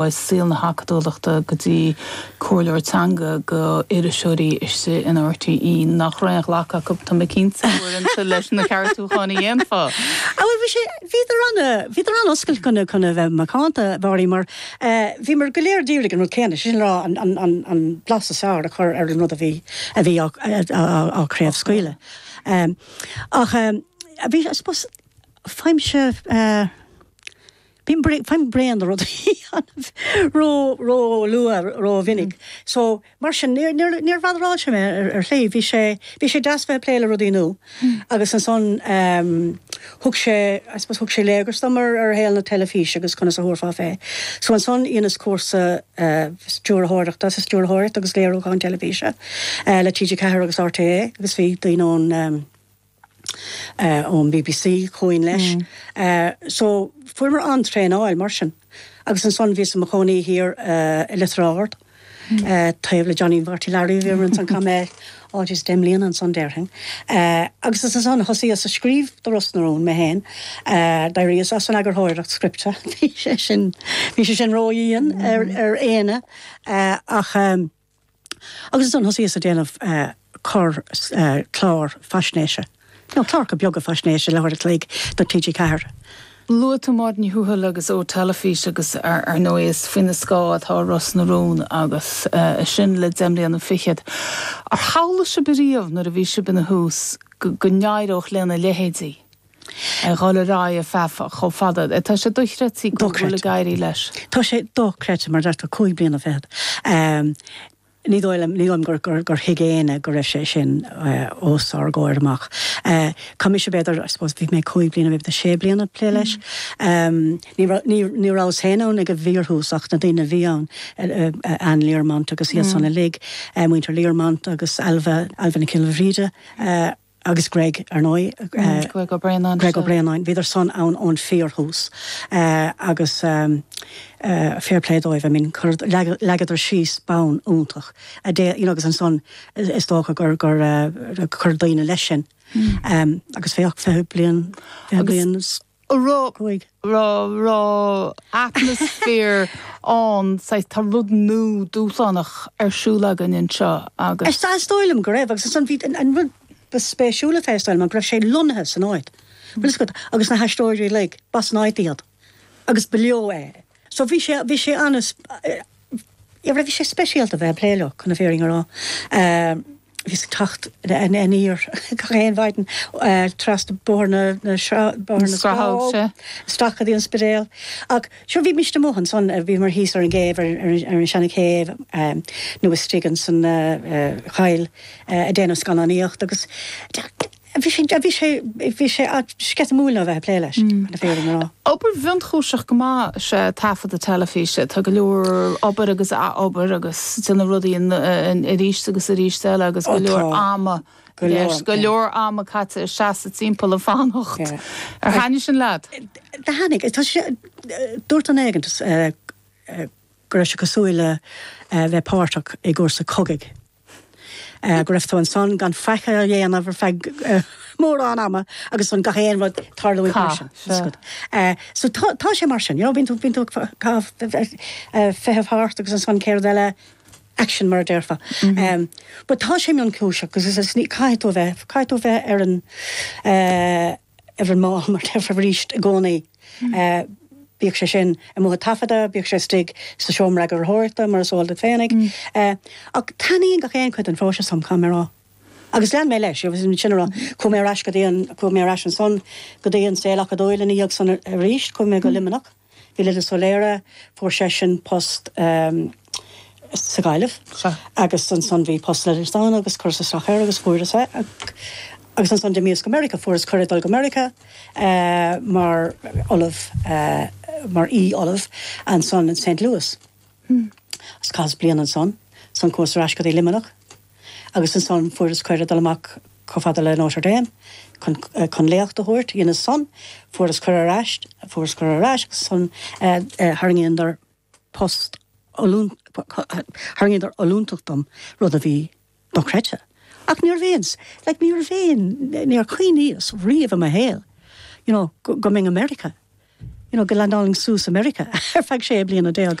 ó saol na hacadúlachta go dtí comhairleoir teanga go iriseoirí istigh in RTÉ nach raibh aon ghlacadh acu, tá mé cinnte, uaireanta leis na ceartúcháin a dhéanfá. Á bhuel, bhí sé, bhíodar an, bhíodar an-oscailte chun a, chun a bheith macánta, a Mhary, mar bhíomar go léir ag iarraidh an rud céanna, sé sin le rá an, an, an, an blas is fearr a chur ar an rud a bhí, a bhí á, á, á chraobhscaoileadh. Ach bhí, I suppose, faighimse. faighim bréan de rudaí ró, ró luath, ró mhinic. So, mar sin, níor, níor, níorbh fhada a raibh mé ar, ar shlí, bhí sé, bhí sé deas bheith ag plé le rudaí nua agus ansan ehm thug sé, I suppose thug sé léargas dom ar, ar shaol na teilifíse agus conas a thabharfá fé. So ansan dheineas cúrsa eh stiúrthóireachta, sa stiúrthóireacht agus léiriúcháin teilifíse eh le TG4 agus RTÉ agus bhí daoine ón ehm, ón bbc chugainn leis so fuaireamar an-traenáil mar sin agus ansan bhíos i mo chónaí thiar i Leitir Ard taobh le Johnny Mharty Larry bhíomar ansan chaith mé á Dia deich mbliana ansan déarfainn agus is ansan a thosaíos a scríobh do Ros na Rún amháin d'éiríos as an eagarthóireacht scripte bhí sé sin bhí sé sin ró-dhian ar éinne ach. Agus ansan thosaíos a' déanamh corr clár faisnéise, nó cláracha beaga faisnéise le huair a chloig do TG4. Luaigh tú Máire Ní Thuathail agus Eo Teilifís agus ar ndóigh is faoina scáth atá Ros na Rún agus sin le deich mbliana fichead. Ar shamhlaigh sibh riamh nuair a bhí sibh ina thús go n-éireodh lena leithéidí? ag dhul ar aghaidh ar feadh chomh fada. Tá sé dochreidte go bhfuil ag éirí leis. Tá sé dochreidte mar deir tú cúig bliana fichead. Ní dóigh liom, ní dóigh liom gur thuig éinne go raibh sé sin os ár gcomhair amach. Chaith mise b'fhéidir, I suppose bhí mé cúig bliana, b'fhéidir sé bliana ag plé leis. Ní rabhas féin ann ag an bhfíorthús ach na daoine a bhí ann, Anne Learmont agus iadsan uilig, muintir Learmont agus Ailbhe, Ailbhe Nic Giolla Bhríde. agus Greg, ar ndóigh. Greg Ó Braonáin. Greg Ó Braonáin. Bhíodar san ann ón fíorthús agus fair play dóibh, I mean, leagadar síos bonn iontach, a dé, you know, agus ansan is dócha gur chuir daoine leis sin agus féach, fiche bliain, fiche bliain 's. atmaisféar ann, saghas, tá rud nua, dúshlánach ar siúl againn anseo agus. Is dóigh liom go raibh agus ansan bhí, an rud ba spéisiúla fé is dóigh liom, go raibh sé lonnaithe san áit, bhfuil 'fhios agat, agus na haisteoirí uilig, b'as an áit iad agus ba leo é so bhí sé, bhí sé an-, bhí sé speisialta bheith a' plé leo chun na fírinne a rá. Bhíos ag teacht aniar gach aon mhaidin trasna Bóthar na Scrathóg, isteach go dtí an Spidéal. Ach sure, bhí mise amuigh ansan, bhíomar thíos ar an gcéibh, ar an seana chéibh, nó istigh insan choill ag déanamh scannánaíocht agus. Bhí sé, bhí sé, bhí sé sceitimíúil ná bheith ag plé leis, chun na fírinne a rá. Obair mhionchúiseach go maith is ea taifeadadh na teilifíse. Tá go leor obair agus ath-obair agus déanamh rudaí arís agus arís eile agus go leor ama i gceist, go leor ama caite ag seasamh timpeall ag fanacht. Ar thaitnigh sin leat? Thaitnigh. Tá sé, dúirt duine éigin go raibh sé cosúil le bheith páirteach i gcúrsaí cogaidh. go raibh tú ansan gan faic a dhéanamh ar feadh mórán ama agus ansan gach aon rud ag tarlúint mar sin. So tá sé mar sin, you know, bíonn tú bíonn tú ag feitheamh thart agus ansan chéad rud eile, action mar a déarfá. But tá sé mionchúiseach agus caithfidh tú a bheith, caithfidh tú a bheith ar an eh, ar an mball, mar a déarfá, arís i gcónaí, bíodh sé sin amuigh ag taifeadadh, bíodh sé istigh sa seomra eagarthóireachta, mar is eol duit féinig. Ach taitníonn gach aon chuid den phróiseas liom, caithfidh mé a rá. Agus lean mé leis, sin a rá, chuaigh mé ar ais go dtí an, chuaigh mé ar ais ansan go dtí an saol acadúil ina dhiaidh san arís, chuaigh mé go Luimneach, bhí Lillis Ó Laoire, fuair seisean post sa Ghaillimh agus ansan bhí post Lillis ann agus chuireas isteach air agus fuaireas é agus ansan d'imíos go Meiriceá, fuaireas cuireadh dul go Meiriceá mar ollamh, mar aoi ollamh ansan in Saint Louis agus chaitheas bliain ansan, ansan chuas ar ais go dtí Luimneach. agus ansan fuaireas cuireadh dul amach chomh fada le Notre Dame chun, eh, chun léacht a thabhairt, dhéineas san, fuaireas cuireadh ar ais, fuaireas cuireadh ar ais agus ansan, eh, eh, thairgíodar post ollúnt, thairgíodar ollúntacht dom, rud a bhí dochreidte, ach níorbh aon, like, níorbh aon, níor chuimhníos riamh i mo shaol, you know, go, go mbeinn i Meiriceá, you know, go leaindeálfainn suas i Meiriceá ar feadh sé bliana déag.